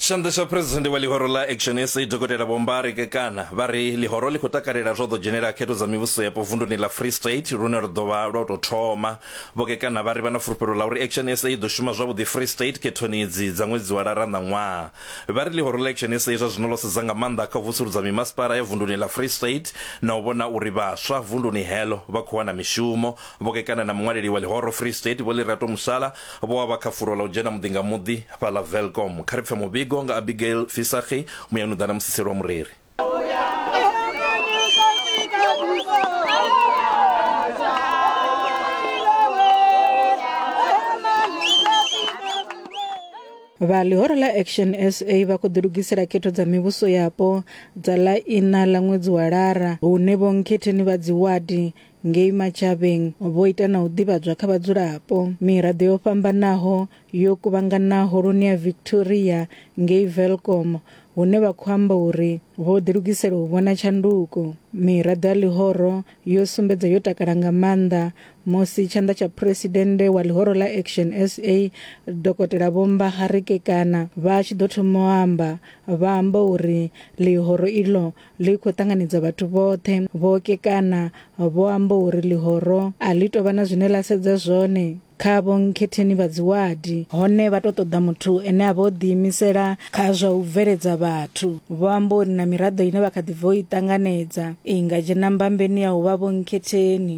tshanḓa tsha phresidennde wa ḽihoro ḽa action sa dokotela vhombari kekana vha ri ḽihoro ḽi khou takalela zwo ḓo dzhenela khetho dza mivhuso yapo vunduni ḽa free state lune ri ḓo vha lwa tou thoma vho kekana vha ri vha na fulufhelo ḽa uri action sa i ḓo shuma zwavhuḓi free state khethoni idzi dza ṅwedzi wa lara na ṅwaha vha ri ḽihoro ḽa action sa zwa zwino ḽo sedza nga maanḓa kha u vusuludza mimasipala ya vunduni ḽa free state na u vhona uri vhaswa vunduni heḽo vha khou wana mishumo vho kekana na muṅwaleli wa ḽihoro free state vho ḽirato musala vho wa vha kha fulo ḽa u dzhena muḓi nga muḓi fhaḽa Velkom. Kha ri pfe muvhigo nga Abigail Visagie, muyani u ḓa na musiseli wa mureri. Vha ḽihoro ḽa Action SA vha khou ḓilugisela khetho dza mivhuso yapo dza ḽa iṋa ḽa ṅwedzi wa Lara hune vhonkhetheni vha dziwadi Ngei Matjhabeng vho ita na u ḓivhadzwa kha vhadzulapo. Miraḓo yo fhambanaho yo kuvhangana Holoni ya Victoria ngei Welkom hune vha khou amba uri vho ḓilugisela u vhona tshanduko. Miraḓo ya ḽihoro yo sumbedza yo takala nga maanḓa musi tshanḓa tsha phresidennde wa ḽihoro ḽa Action sa, Dokotela Vho Mbahare Kekana vha tshi ḓo thoma u amba vha amba uri ḽihoro iḽo ḽi khou ṱanganedza vhathu vhoṱhe vho kekana vho amba uri ḽihoro a ḽi tou vha na zwine ḽa sedza zwone kha vho nkhetheni vha dziwadi hone vha tou ṱoḓa muthu ene a vha o ḓiimisela kha zwa u bveledza vhathu vho amba uri na miraḓo ine vha kha ḓi bva u i ṱanganedza i nga dzhena mbambeni ya u vha vho nkhetheni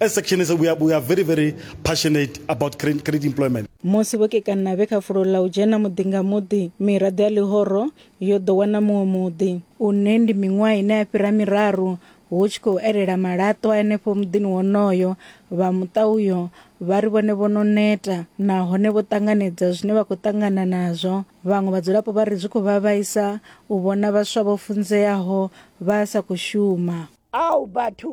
As sectionists, we are, we are very, very passionate about creating, creating employment. musi vho kekana vhe kha fulo ḽa u dzhena muḓi nga muḓi miraḓo ya ḽihoro yo ḓo wana muṅwe muḓi une ndi miṅwaha ine ya fhira miraru hu tshi khou elela malaṱwa henefho muḓini wonoyo vha muṱa uyo vha ri vhone vho no neta nahone vho ṱanganedza zwine vha khou ṱangana nazwo vhaṅwe vhadzulapo vha ri zwi khou vha vhaisa u vhona vhaswa vho funzeaho vha sa khou shuma ao batho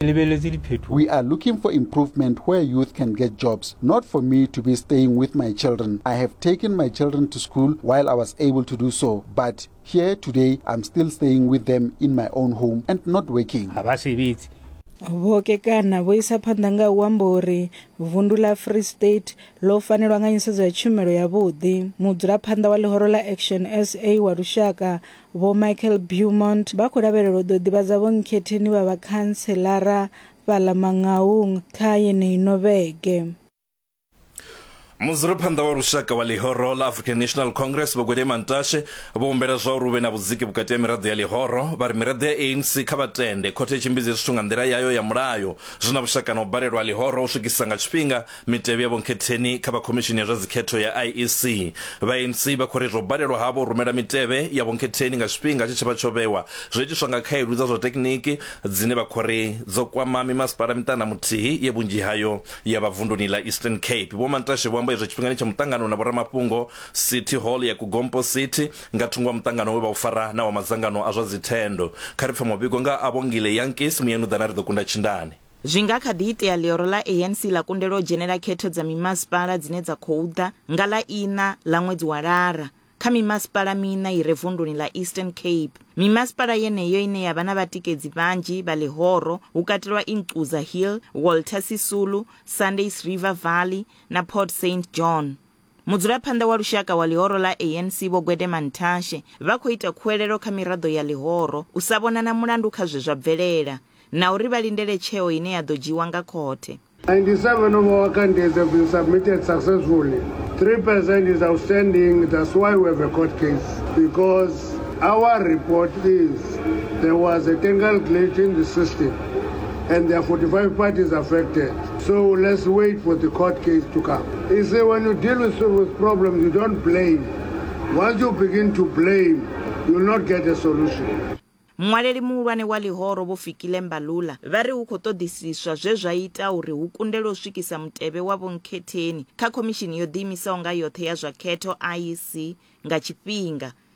Ke lebeletse diphetoho. We are looking for improvement where youth can get jobs, not for me to be staying with my children. I have taken my children to school while I was able to do so, but here today I'm still staying with them in my own home and not working. Ha ba sebetse. vho kekana vho isa phanḓa nga u amba uri vundu ḽa free state ḽo fanelwa nga nyisedzo ya tshumelo yavhuḓi mudzulaphanḓa wa ḽihoro ḽa action sa wa lushaka Vho Michael Beaumont vha khou lavhelelwa u ḓo ḓivhadza vhonkhetheni vha vhakhanselara fhaḽa Mangaung kha yeneyi ino vhege. Mudzulaphanḓa wa lushaka wa ḽihoro ḽa African National Congress Vho Gwede Mantashe vho humbela zwauri hu vhe na vhudziki vhukati ha miraḓo ya ḽihoro, vha ri miraḓo ya ANC kha vha tende khothe i tshimbidze zwithu nga nḓila yayo ya mulayo zwi na vhushaka na u balelwa ha ḽihoro u swikisa nga tshifhinga Mitevhe ya Vho Nkhetheni kha vha Khomishini ya zwa Dzikhetho ya IEC. Vha ANC vha khou ri zwo balelwa havho u rumela mitevhe ya Vho Nkhetheni nga tshifhinga tshe tsha vha tsho vhewa, zwo itiswa nga khaedu dza zwa thekhiniki dzine vha khou ri dzo kwama mimasipala miṱana muthihi ye vhunzhi hayo ya vha vunduni ḽa Eastern Cape. Vho Mantashe vho amba izwo tshifhingani tsha muṱangano na vhoramafhungo City Hall ya Gompo City nga thungo ha muṱangano we vha u fara na wa madzangano a zwa dzithendo. Kha ri pfe muvhigo nga ha Vho Ngile Yankees, Muyanuḓana ri ḓo kunda tshindani. Zwi nga kha ḓi itea ḽioro ḽa ANC ḽa kundelwa u dzhenela khetho dza mimasipala dzine dza khou ḓa nga ḽa iṋa ḽa ṅwedzi wa Lara. Kha mimasipala miṋa i re vunduni ḽa Eastern Cape, mimasipala yeneyo ine ya vha na vhatikedzi vhanzhi vha ḽihoro hu katelwa Ingquza Hill, Walter Sisulu, Sundays River Valley na Port Saint John. Mudzulaphanḓa wa lushaka wa ḽihoro ḽa ANC Vho Gwede Mantashe vha khou ita khuwelelo kha miraḓo ya ḽihoro u sa vhona na mulandu kha zwe zwa bvelela na uri vha lindele tsheo ine ya ḓo dzhiiwa nga khothe. 97 of our candidates have been submitted successfully. 3 percent is outstanding, that's why we have a court case because our report is there was a technical glitch in the system and there are 45 parties affected. So let's wait for the court case to come. He said, when you deal with serious problems, you don't blame. Once you begin to blame, you will not get a solution. muṅwaleli muhulwane wa ḽihoro vho fikile mbalula vha ri hu khou ṱoḓisiswa zwe zwa ita uri hu kundelwe u swikisa mutevhe wa vhonkhetheni kha khomishini yo ḓiimisaho nga yoṱhe ya zwa khetho iec nga tshifhinga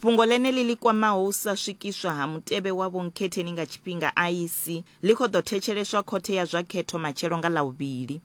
Fhungo ḽeneḽi ḽi kwamaho u sa swikiswa ha mutevhe wa vhonkhetheni nga tshifhinga, IEC, ḽi khou ḓo thetsheleswa khothe ya zwa khetho matshelo nga Ḽavhuvhili.